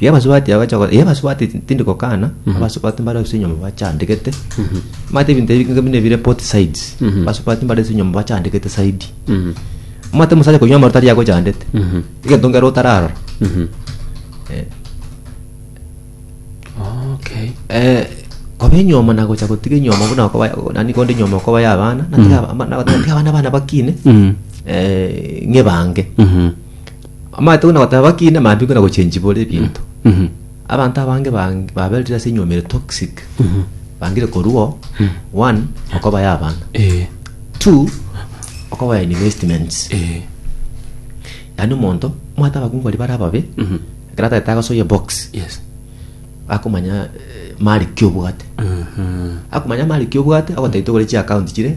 Yabasubati abacha go- yabasubati ti- tindi gokana abasubati mbare ase enyomba bachandegete mate ebinto ebi bike buna ebire both sides basubati mbare ase enyomba bachandegete saidi omate omosacha konywa amarote aria agochandete egento nkere otararora Eh, okay eh, koba enyoma nagocha gotiga enyoma buna okoba nani konde enyoma okoba ya abana natiga aba- ama- natiga abana bana bakine eh, ng'ebange Amaete buna goteba bakina amambe buna gochenchibora ebinto. Abanto abange bang- baberire ase enyuomi ere toxic. Bangire korwo one okobaya abana. Eh, Two okobaya investments. eh, Yaani omonto omwate abakungu baria bare ababe ekero atagete agosoyia box yes. akomanya eh, mali ki obwate Mhm. akomanya mali ki obwate agotaitogore chiaccount chire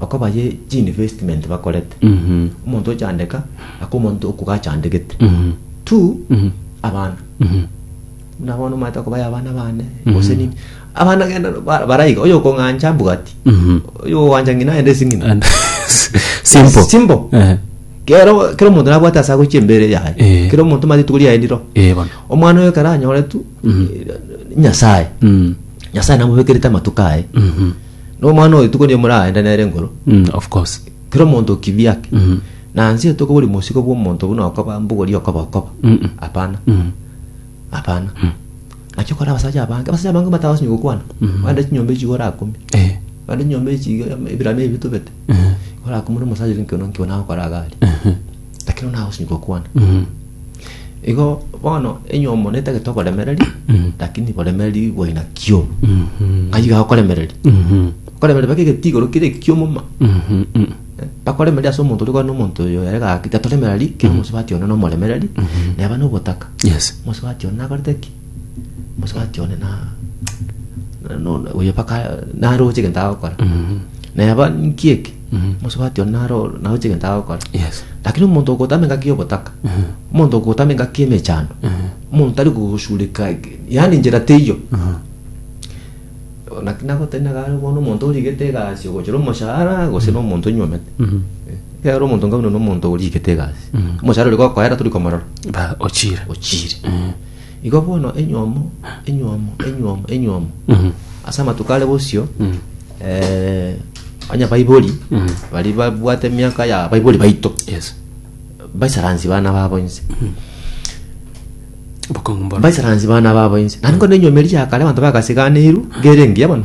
Bakobaye chiinvestment bakorete. Omonto ochandeka aka omonto okoga achandegete. Two, abana. Buna bono omanyete okobaya abana bane gose nini. Abana genda ba- baraiga oyo okong'ancha mbugati. Oyo owancha ng'ina aende esing'ina. And- simple Simple. Eh, Kero kero omonto nabwate ase agochia embere Eh. yaye. Kero omonto omanyete rituko riaye riro. eh, bono Omwana oyo ekero anyore tu nyasaye. Mm. Nyasaye namobekerete amatuko aye. Mhm. Nomwana oyo tuko niye moraende nere ngoro. Mm, of course. Kero omonto okibia ake. Mm. Na nse tokobori mosigo bwa omonto buna okoba mbugori okoba okoba. Mm, mm. Hapana. Mm. Hapana. Nakio kora abasacha abange. Abasacha abange matago sinyo gokwana. Wanda chinyomba echi gora akumi. Eh. Wanda chinyomba echi ebirame ebi tobete. Gora akumi na omosacha ore nkiona nkiona agokora agari. lakini ona agosinyi gokwana igo bono enywa omonete egete oboremereri lakini boremereri bwa aina kio ng'ai iga akoremereri okoremereri baka egete igoro kere ekio moma bakoremereri ase omonto oria okwana omonto oyo ere gaki gatoremereri kera omosubati one nomoremereri neba nogotaka yes omosubati one nakorete ki omosubati one na na- no- oyo baka naroche egento agokora neba ninki eke Mosubati one naro oro, naroche egento agokora. Yes. Lakini omonto ogotama engaki y'obotaka, omonto ogotama engaki y'emechando, omonto tari kogosureka, yaani njera teiyo. Naki nagotari nagare bono omonto origete egasi ogochera omoshahara gose n'omonto onywomete. Ekero omonto nka buna nomonto origete egasi, omoshahara oria gokoera tori komorora, Ba ochire. ochire. Igo bono enywomo, enywomo, enywomo, enywomo, ase amatuko are bosio eh, onye baibori baria babwate emiaka ya baibori baito Yes. baisaransi bana babo inse Bokong'u mboro. baisaransi bana babo inse nari ngono enywomeri ya kare abanto bagasiganeiru gere engiya bono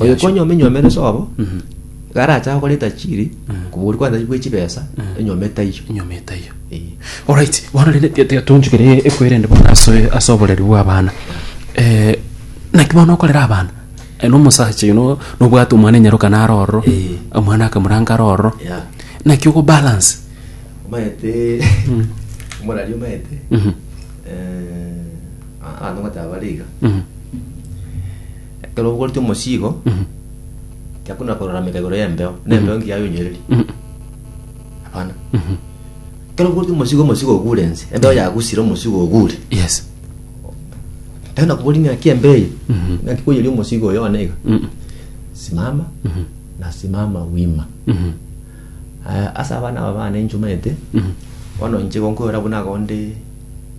Oyo Yasho. konya omenywomera esobo, garacha gokora etachiri, kobori kwanza bwe chibesa, enyoma etaiyo. enyoma etaiyo Eh. Alright, bono rende tiga- tiga tonchukere ekwerende bono ase ase oboreri bwa abana Eh, naki bono okorera abana eh, nomosacha oyo no- nobwate omwana enyaroka naro ororo Eh. omwana akamoranga aro ororo Yeah. naki ogobalance Omaete, omorari omaete, Mhm, eh, a- ano gotaba bare iga. mhm. Ekero obogoretie omosiigo, tiakonyara korarameka igoro y'embeo, na embeo engiya yonyorerie. Hapana. Ekero obogoretie omosiigo, omosiigo ogure ense, embeo yagusire, omosiigo ogure. Yes. Ekero nakobori ng'aki embeo eye, ng'aki koiyeria omosiigo oyo one iga, simama, nasimama wima. Aya, ase abana aba bane inchumaete, bono inche igo nkoira buna iga onde